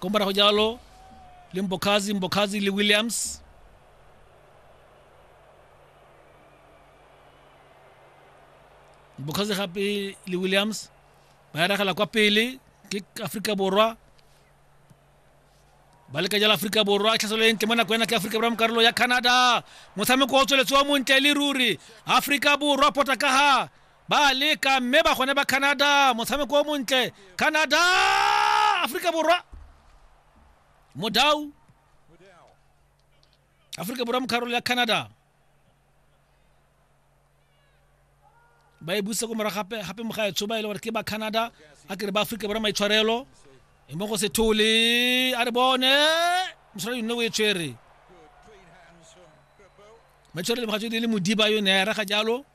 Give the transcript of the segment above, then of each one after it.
ko morago jalo le mbokazi mbokazi le williams mbokazi gape le williams ba eragela kwa pele ke aforika borwa ba leka jalo aforika borwa tlhaselo e ntle mo nako ena ke aforika borwa mo karolo ya canada motshameko o tsweletse wa montle le ruri aforika borwa potakaga ba a leka mme ba gone ba canada motshameko o montle canada aforika borwa modau aforika borwa mo kgarolo ya canada ba e busa ko morago gape gape mogaetsho ba e le gore ke ba canada a kere ba aforika borwa maitshwarelo e mo go sethole a re bone mosala yone o e tshwere maitshwarelo mogatso e le modiba yone ya raga jalo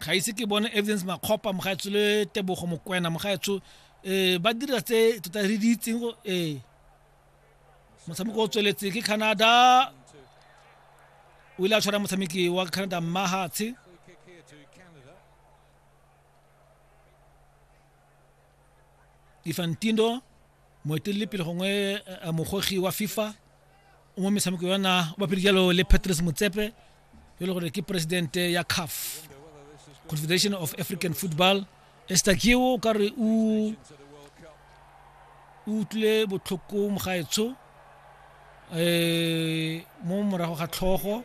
ga ise ke bone evidence makgopa mogaetsho le tebogo mokwena mogaetsho um eh, ba dira tse tota re di itseng um eh. motshameko o tsweletse ke canada o ile a tshwara motshameki wa canada mmahatshe Infantino moeteledipele gongwe eh, eh, mogogi wa fifa o mo metshameko yona o bapile jalo le patrice motsepe yo e le gore ke presidente ya caf confederation of african football estakio o ka re o utlwile botlhoko mogaetsho um eh, mo morago ga tlhogo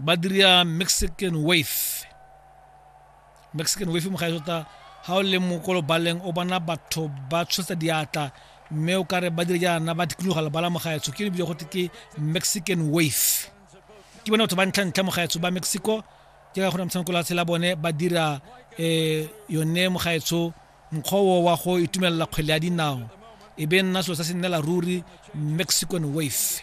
ba dira mexican wave mexican wave mo ga tota ha o le mokolo baleng o bona batho ba tshosa diatla mme o kare ba dire jaana ba dikologa le bala mogaetsho ke lebile gote ke mexican wave ke bone batho ba ntlha ntlha mogaetsho ba mexico ke ka gore motshameko la tshela bone ba dira um yone mogaetsho mokgwa wa go itumelela kgwele ya dinao e be nna selo sa se nnela ruri mexican wave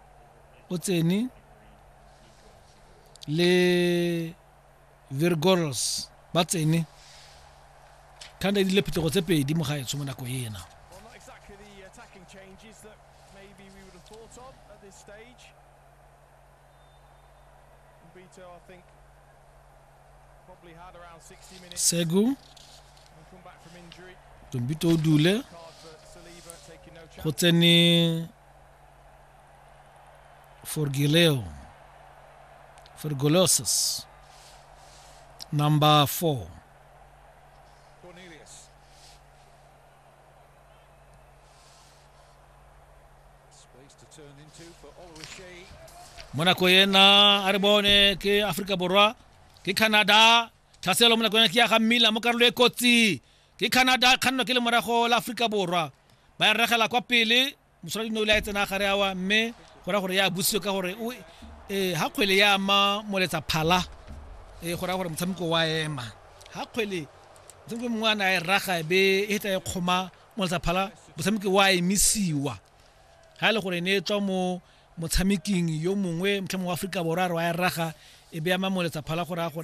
o tsene le virgorels ba tsene thanda e dile phetogo tse pedi mo gaetsho mo nako ena Vito, I think, probably had around 60 minutes. Segu. Come back from injury. Tumbito Dule. Go tsene Forgileo. Forgulosis. Number four. Cornelius. Space to turn into for Oluwaseyi. mo nako ena a re bone ke aforika borwa ke canada tlhaselo mo nako ena ke ya ga mmila mo karolo e kotsi ke canada kgannwa ke le morago la aforika borwa ba e regela kwa pele mosoladi ne o le a tsena gare awa mme go ra gore ya busiwe ka gore um ga kgwele ya ama moletsa phala um go ra gore motshameko wa ema ga kgwele motshameko mongwe a ne a e raga e be e feta e kgoma moletsa phala motshameki wa emisiwa ga e le gore ne e tswa mo motshameking yo mongwe motlha mongwe wa aforika borwa a re wa e raga e be ama moletsa phala go raya gore